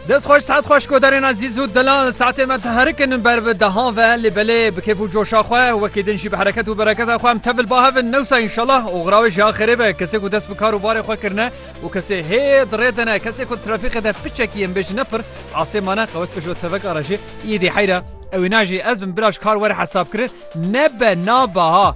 Dest xweş saet xweş koderên ezîz û dilan saetê me diherikin ber bi dehan ve lê belê bi kêf û coşa xwe wekî din jî bi hereket û bereketa xwe em tevil bahevin newsa înşallah oxira wê jî axirê be kesê ku dest bi kar û barê xwe kirine û kesê hê di rê de ne kesê ku trafîqê de piçekî em bêjin ne pir asê mane qewet pişt teveka re jî îdî heyra ewî najî ez bin biraj kar were hesabkirin nebe nabe ha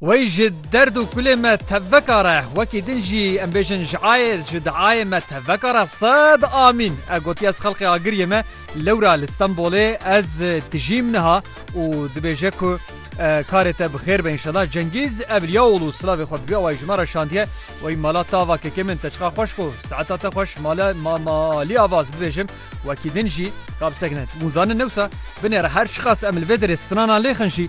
Wey ji derd û kulê me tevveka re, wekî din jî em bêjin ji ayê, ji diayê me tevveka re sed amîn. E gotiye ez xelqê Agiriyê me lewra li Stenbolê ez dijîm niha û dibêje ku karê te bi xêr be înşela. Cengîz Evliyaoğlu silavê xwe bi vî awayî ji me re şandiye. Wey mala te ava kekê min te çiqar xweş ku saeta te xweş mala ma malî ava ez bibêjim wekî din jî ka bi sek ne. Hûn zanin newsa binêre her çiqas em li vê derê sinanan lêxin jî,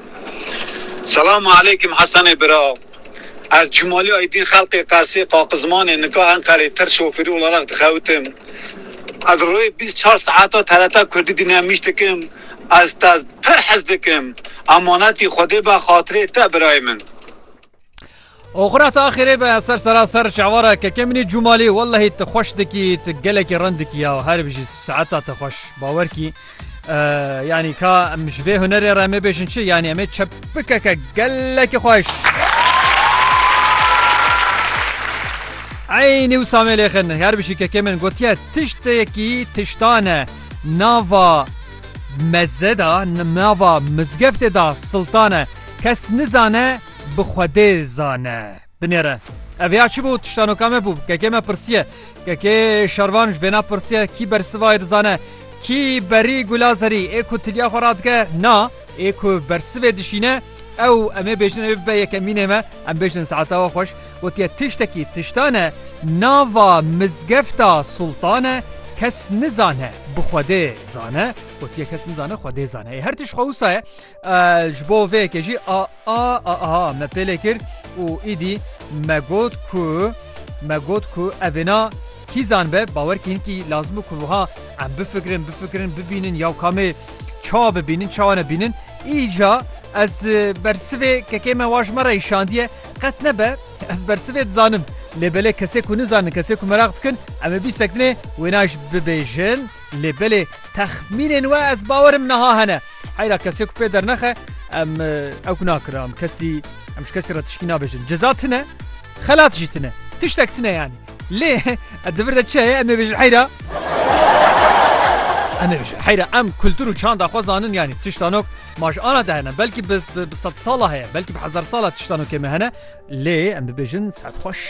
Selam aleykim Hesenê bira ez Cumali Aydin xelqê Qersê Qaqizmanê nika Enqerê tir şofirî olaraq dixewitim ez royê bîst çar saeta TRT kurdî dinemiş dikim ez te pir hez dikim emanetî xwedê be xatirê te birayê min. Oxira ta xêrê be ser sera ser çavara keke minî cûmalî wellahî tu xweş dikî tu gelekî rin dikî ya her bijî saeta te xweş bawer kî yanî ka em ji vê hunerê re me bêjin çi yanî em ê çepikeke gelekî xweş. Eynî û samê lêxin her bijî keke min gotiye tiştekî tiştane nava Meze da nava mizgeftê da siltane kes nizane bi xwedê zane. Binêre. Ev ya çi bû tiştanoka me bû kekê me pirsiye. Kekê şervan ji vêna pirsiye kî bersivayê dizane kî berî gula zerî ê ku tiliya xwe radike na ê ku bersivê dişîne ew em ê bêjin ew ê bibe yekemînê me em bêjin saetewa xweş. Gotiye tiştekî tiştan e, nava mizgefta Sultan e, kes nizane bi Xwedê zane, gotiye kes nizane Xwedê zane. Ê her tişt xwe wisa ye, ji bo vê yekê jî a a a a me pêlê kir û îdî me got ku me got ku evêna kîzan be bawer kî hinkî lazim bû ku wiha em bifikirin bifikirin bibînin yaw kamê çawa bibînin çawa nebînin îca ez bersivê kekê me wa ji me re îşandiye Qet nebe, ez bersivê dizanim. Lê belê kesê ku nizanin, kesê ku meraq dikin, em ê bîst sekinê wêna ji bibêjin. Lê belê texmînên we ez bawerim niha hene. Heyra kesê ku pê dernexe em ew ku nakirin. Em kesî em ji kesî re tişkî nabêjin. Ceza tune, xelat jî tune. Tiştek tune yanî. Lê di vir de çi heye em ê bêjin heyra. Em ê bêjin heyra em kultur û çanda xwe zanin yanî tiştanok Ma ji ara de hene belkî bi sed sala heye belkî bi hezar sala tişta nokê me hene lê em bibêjin saet xweş.